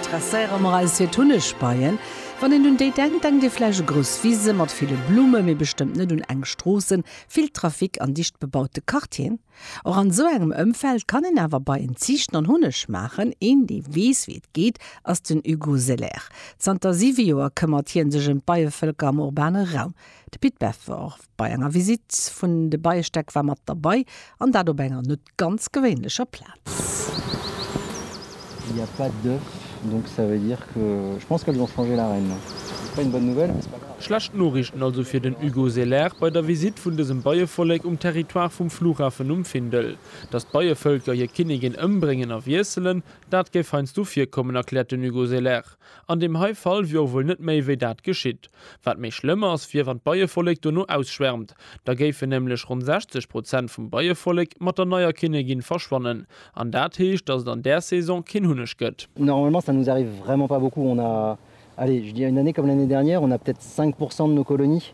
Interesséiere mer eis fir d'Hunnegbeien? Wann een un déi denkt, denkt ee vläicht u grouss Wise mat ville Blumme, mee bestëmmt net un enk Stroossen, vill Trafic an dicht bebaute Quartieren. Och an esou engem Ëmfeld kann een awer Beien ziichten an Hunneg maachen. Een, dee weess, wéi et geet, ass den Hugo Selaire. Zanter siwe Joer këmmert hie sech ëm d'Beievëlker am urbane Raum. De Pit Befort bei enger Visitt vun de Beiestäck war mat derbei, an dat op enger. ganz gewéinlecher Plaz. Schlecht Noriichten also fir den Hugo Selaert bei der Visitt vun dësem Beievollek um Territoire vum Flughafen um Findel. Datt d'Beievëlker hir Kinnigin ëmbréngen a wiesselen, dat géif heiansdo virkommen, erkläert den Hugo Selaert. An deem hei Fall wier och wuel net méi wéi dat geschitt. Wat méi schlëmm ass, wier wann d'Beievollek dono ausschwärmt. Da géifen nämlech ronn 60 Prozent vum Beievollek mat der neier Kinnegin verschwannen. An dat heescht, datt et an där Saison keen Hunneg gëtt. Normalement ça nous arrive vraiment pas beaucoup, on a, allez je dirais une année comme l'année dernière, on a peut-être 5 pourcent de nos colonies.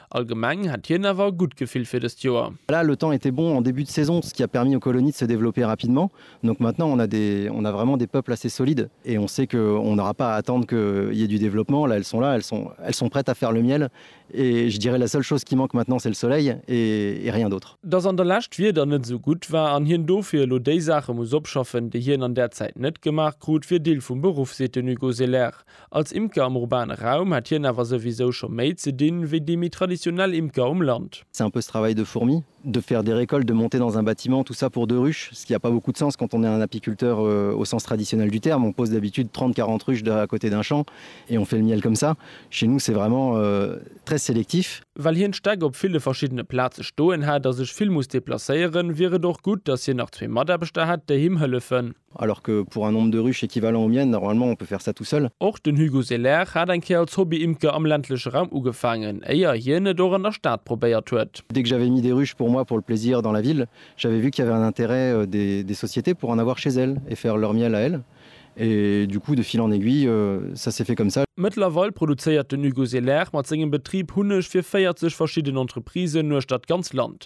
Allgemeng hätt hien awer e gutt Gefill fir dëst Joer. Voilà, le temps était bon en début de saison, ce qui a permis aux colonies de se développer rapidement. Donc maintenant on a des, on a vraiment des peuples assez solides et on sait que on n'aura pas à attendre qu'il y ait du développement. Là, elles sont là, elles sont, elles sont prêtes à faire le miel et je dirais la seule chose qui manque maintenant c'est le soleil et, et rien d'autre. Dass an der Lescht d'Wieder net esou gutt war an hien dofir elo déi Saache muss opschaffen, déi hien an där Zäit net gemaach krut, wier Deel vum Beruff, seet den Hugo Selaert. Als Imker am urbane Raum hätt hien awer souwisou scho méi ze dinn, wéi déi méi traditionell Imker um Land. C'est un peu ce travail de fourmi, de faire des récoltes, de monter dans un bâtiment, tout ça pour deux ruches, ce qui a pas beaucoup de sens quand on est un apiculteur au sens traditionnel du terme, on pose d'habitude 30-40 ruches à côté d'un champ et on fait le miel comme ça. Chez nous c'est vraiment très sélectif. Well hien d'Stäck op ville verschiddene Plaze stoen hätt a sech vill muss deplacéieren, wier et och gutt, datt hien nach zwee Mataarbechter hätt, déi him hëllefen. Alors que pour un nombre de ruches équivalent au mien, normalement, on peut faire ça tout seul. Och den Hugo Selaire hat eng Kéier als Hobby-Imker am ländleche Raum ugefaangen, éier hien et och an der Stad probéiert huet. Dès que j'avais mis des ruches pour moi pour le plaisir dans la ville, j'avais vu qu'il y avait un intérêt des sociétés pour en avoir chez elles et faire leur miel à elles. Et du coup, de fil en aiguille, ça s'est fait comme ça. Mëttlerweil produzéiert den Hugo Selaire mat sengem Betrib Hunneg fir 40 verschidden Entreprisen uechter d'ganz Land.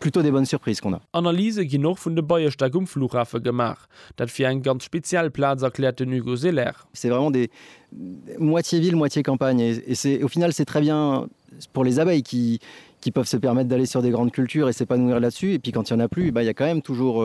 Plutôt des bonnes surprises qu'on a. Analyse ginn och vun de Beierstéck um Flughafe gemaach. Dat wier eng ganz speziell Plaz, erkläert den Hugo Selaire. C'est vraiment des moitié ville, moitié campagne et c'est au final c'est très bien pour les abeilles qui qui peuvent se permettre d'aller sur des grandes cultures et s'épanouir là-dessus et puis quand il y en a plus, eh ben il y a quand même toujours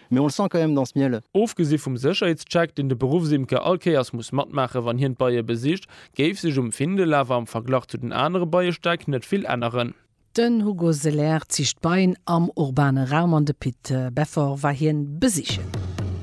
Mais on le sent quand même dans ce miel. Ofgesi vum Sécherheetscheck, deen de Beruffsimker all Kéiers muss matmaache wann hien d'Beie besicht, géif sech um Findel awer am Verglach zu den anere Beiestäck net vill änneren. Den Hugo Selaire ziicht Beien am urbane Raum an de Pit Beffort war hien besichen.